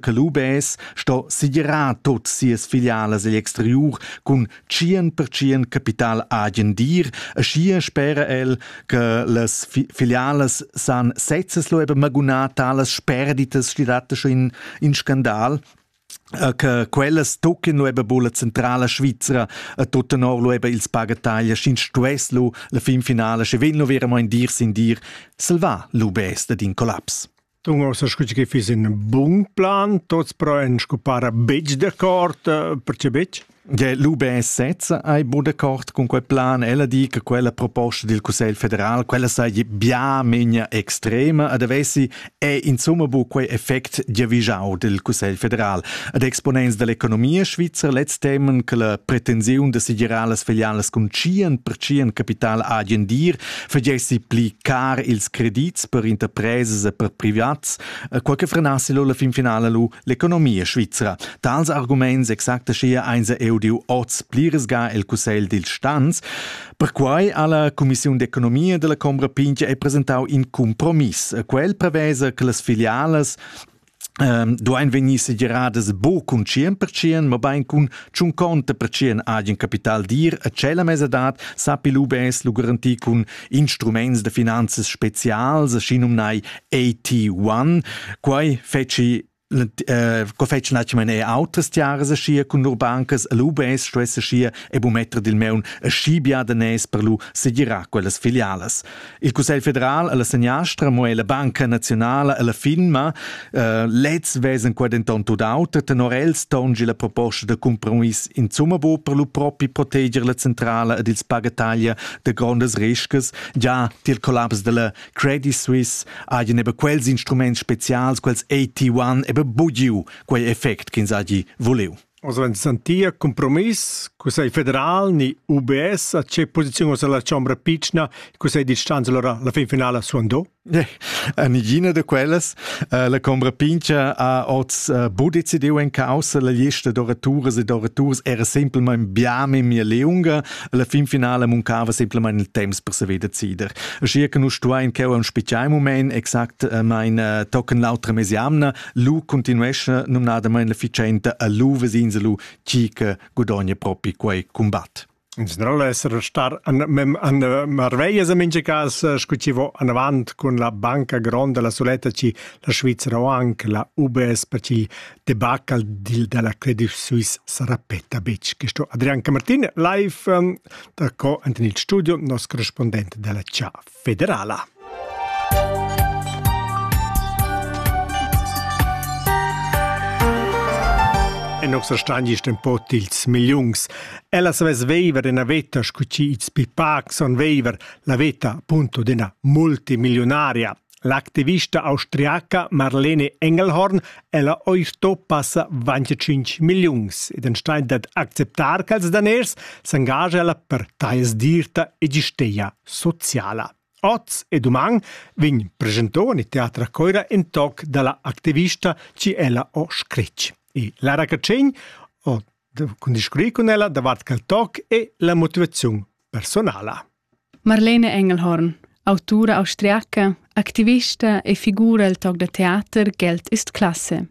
che l'UBS sto segirar tot sias filialas egl exteriur cun tschien per tschien capital agen dir, e schier spera el, che las fi filialas san sezzes lo eben magunar talas sperditas schidatta schon in, in Skandal, äh, che quellas tocchin lo eben bulla centrala Svizzera e tutten or lo eben ils pagataglia, sch'in stuess lo la fin finale, sche vil lo veramente in dir sin dir, salvà l'UBS da din collaps. Tung ossa scu che fiss in bun plan, tots però en scupara betg d'accord, perché betg? Ja, Lubin sezza hai bu d'accord cun quel plan. Ella di che quella proposta del Cussegl federal, quella saja bia menia extrema ad avessi è insomma bu quei effect giavischau del Cussegl federal. Ad exponents dell'economia svizzer letz temen che la pretensiun de segirar las filialas con cien per cien capital agien dir fagessi pli car ils credits per interpresas e per privats, eh, qual che frenassi lo la fin finala lu l'economia svizra. Tals arguments exacta schia einsa eu diu oz pliresga el Cussegl dil Stanz. Perquai ha la Commissiun d'economia della Combra Pinche è presentau in compromiss. Quel prevesa che las filialas ehm, duain vegnir segiradas bo cun 100%, mabain cun tschun conta percient agen capital dir a tschella mesadad sapi l'UBS lo garantir cun instruments da finanzas spezials, aschi numnai AT1. Quai feci Uh, co fetsch natschmen e autas tiaras aschia cun lur bancas l'UBS stuess aschia e bumetter dil meun aschi bia da nes per lu segirar quellas filialas. Il Cussegl federal e la seniastra mo è la Banca nazionala e la firma. Uh, lez vesan qua denton tut auter, tenor els tongi la proposta da compromiss insumma bo per lu propi proteger la centrala ed ils pagataglia de grondas riscas. Già tiel collaps della Credit Suisse haien eben quels instruments spezials, quels AT1 eben bugiu quei effekt che ins hagi vuliu. Oz vegn sentia cumpromiss, cussegl federal ni UBS a tge posiziun oz la chombra pitschna, il cussegl di stanza allora la fin finala suandò? Nigina da quellas. Uh, la combra pincha ha oz uh, bu decidiu en causa la lista d'oraturas e d'oraturas era semplmein biame mia leunga, alla fin finale muncava semplmein il temps per saver decider. Schier che nus stuein cheu am spicciai moment exact uh, mein uh, tocken l'autra mesiamna, Lu continuescha numnadamein la ficenta a lu vesins lu chi che gudogna propi quei combat. In general essere star an mem an marveglia se minge cas scutivo an avant con la banca gronda la soletta ci la Svizzera o anche la UBS per ci debacle deal della Credit Suisse sarà petta bitch questo Adrian Camartin live um, da co anten il studio nos corrispondente della CIAF federala. E nossa stangiest in pot ils milliuns. Ella savess veiver ina veta scu ci ils pipac son veiver, la veta appunto d'ina multimilionaria. L'activista austriaca Marlene Engelhorn ella oi sto passa 25 milliuns ed enstein dat acceptar che els daners s'engagia ella per taies dirta e gisteia sociala. Oz e duman vegn presentò in teatra coira in toc dalla activista ci ella o scritg. E Lara Cacegn ho cun discurrir con ella davart quel toc e la motivazione personala. Marlene Engelhorn, autura austriaca, activista e figura il toc da teater Geld ist Klasse.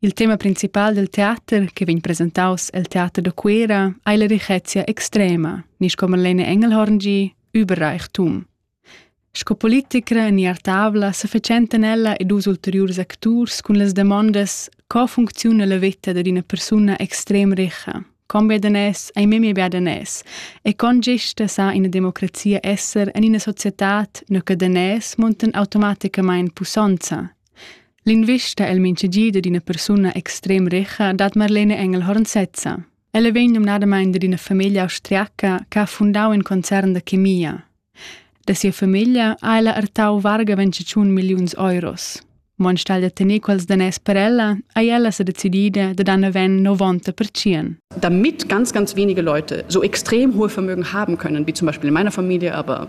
Il tema principal del teater, che vegn presentaus el Teater da Cuera, ei la richezia extrema, ni sco Marlene Engelhorngi, Überreichtum. Sco politicra ni artavla se fecenten ella e dus ulteriurs acturs cun las demondas co funcziuna la veta dad ina persuna extrem richa, con bedanes ei memia bedanes e con gesta sa ina democrazia esser en ina societad no che danes monten automaticamain pussonza L'invista el minchagida d'üna persuna extrem richa dat Marlene Engelhorn sezza. Ella vegn numnadamaing da üna famiglia austriaca che ha fundau in concern da chemia. Da sia famiglia ha ella ertau varga 25 milliuns euros. Mo anstelle da tener quels daners per ella, ha ella se decidida da dann aven 90%. Damit ganz, ganz wenige Leute so extrem hohe Vermögen haben können, wie zum Beispiel in meiner Familie, aber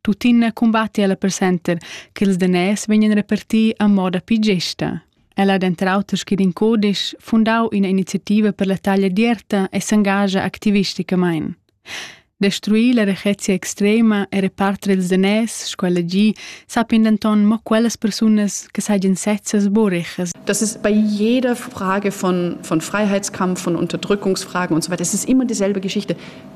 Tuttina cumbatti ella per center che ils daners vegnan reparti a moda più gesta. Ella ha denter auter scrit in codisch, fundau ina iniziativa per la taglia d'ierta e s'engagia activisticamain. Destruir la rechezia extrema e reparter ils daners, sco ella gi, sappian denton mo quellas persunas che sajan sezzas boreches. Das ist bei jeder Frage von, von Freiheitskampf, von Unterdrückungsfragen und so weiter, es ist immer dieselbe Geschichte.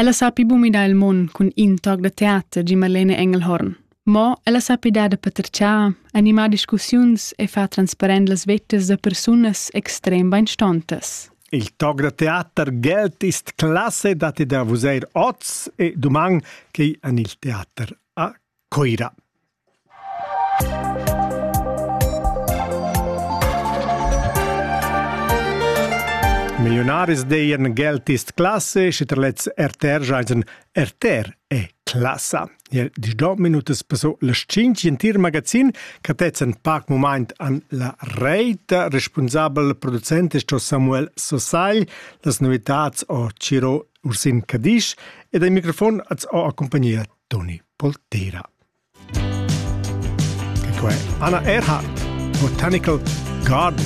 Ella sapi bu midar il mund cun in toc da teater gi Marlene Engelhorn. Mo ella sapi dar da patertgiar, animar discussiuns e far transparent las vettas da persunas extrem beinstontas. Il toc da teater gelt ist classe dati da vuseir oz e duman chei an il teater a Coira. Milliunaris deien geltist classe, schi ter lets RTR jaisen RTR e classa. Jel dis do minutas passo las cinc in tir magazin che tetzen pac moment an la reit, responsabel producent sto Samuel Sosagl, las novitats o Ciro Ursin Cadisch ed al microfon az o accompagnia Toni Poltera. Che quei Anna Erhard, Botanical Garden.